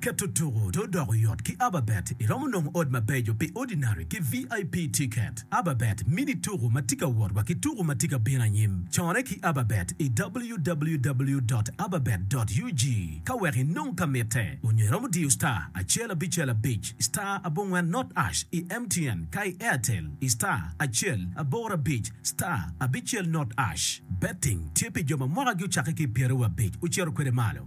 Keto tuku dong odoko yot ki Ababet, iromo nongo ot mabeco pi Ordinary ki VIP tiket. Ababet mini tuku ma tye ka wot wa ki tuku ma tye ka bino anyim. Cone ki Ababet i www dot ababet dot ug ka wek inong ka mitte, onyo iromo diyo star acel abicel abic star abongwen not ash i MTN ka i Airtel i star acel aboro abic star abicel not ash. Betting tye pi jo ma mwakagi ocakke ki i pyeraryo abic ocito kwede malo.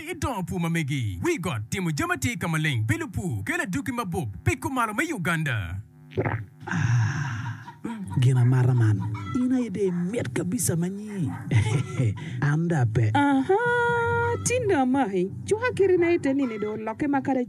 I dongo pur ma megi, wi got, timo jami atir ka maleng, bilo pur, kelo adwogi mabup, piko malo me Uganda. Ah, gin amata man. In aye dong imit kabisa ma nyi. An dong ape. Aha, tin dong amaki. Cuka kite na ite nini dong olokke ma kadi.